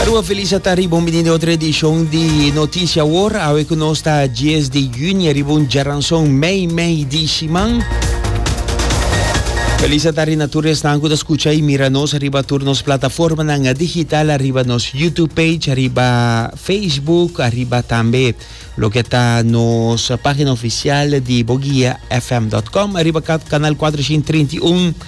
Arua Felisa ta riba un bini de otro edishon di Notisia Wor. Awe ku nos ta 10 di juni ariba un djaranson mei mei di siman. Felisa ta rina tur esnan ku ta skucha i mira nos riba tur nos plataformanan digital, ariba nos YouTube page, ariba Facebook, ariba tambe loke ta nos pagina ofisial di boguiafm.com, ariba kanal 431.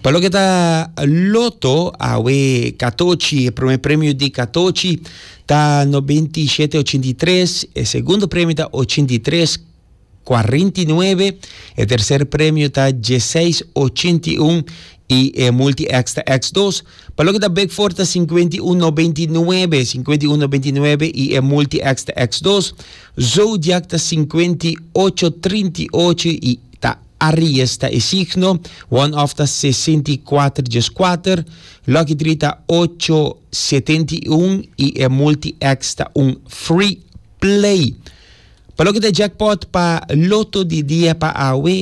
Pa loke ta loto, awe katochi, e prome premio di katochi ta nobenti i shete ochinta i tres, e segundo premio ta ochinta i tres kuarenta i nuebe, e terser premio ta dieseis ochinta i un i e multi X ta X dos. Pa loke ta Big Four ta sinkuenta i un nobenti i nuebe, sinkuenta i un nobenti i nuebe i e multi X ta X dos. Zodiac ta sinkuenta i ocho trinta i ocho i ta Aries ta e signo, one of ta sesenta i kuater dies kuater, lucky drie ta ocho setenta i un i e multi X ta un free play. Pa loke ta jackpot pa loto di dia pa awe,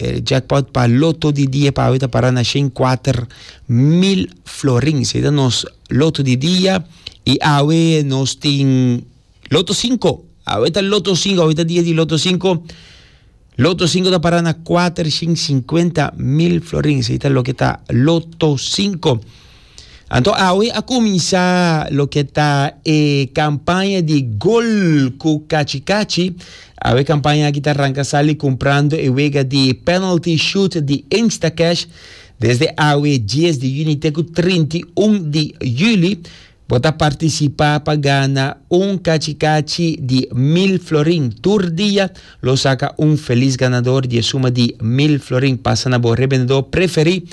e jackpot pa loto di dia pa awe ta para na shen kuater mil florins. Ei ta nos loto di dia i awe nos tin. Loto sinku. Awe ta loto sinku, awe ta dia di loto sinku. Loto sinku ta para na kuater shin sinkuenta mil florin. Esei ta loke ta loto sinku. Anto awe a kuminsá loke ta e kampaña di gol ku kachi kachi. Awe kampaña aki ta ranka sali kumprando e wega di penalty shoot di Instacash desde awe dies di yuni te ku trinta i un di yuli. Bo ta partisipá pa gana un kachi-kachi di mil florin. Tur dia lo saka un felis ganador di e suma di mil florin. Pasa na bo rebendedor preferí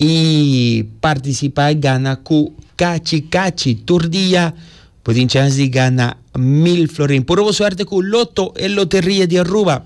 i partisipá gana ku kachi-kachi. Tur dia bo tin chèns di gana mil florin. Puru bo suerte ku Lotto, e loteria di Aruba.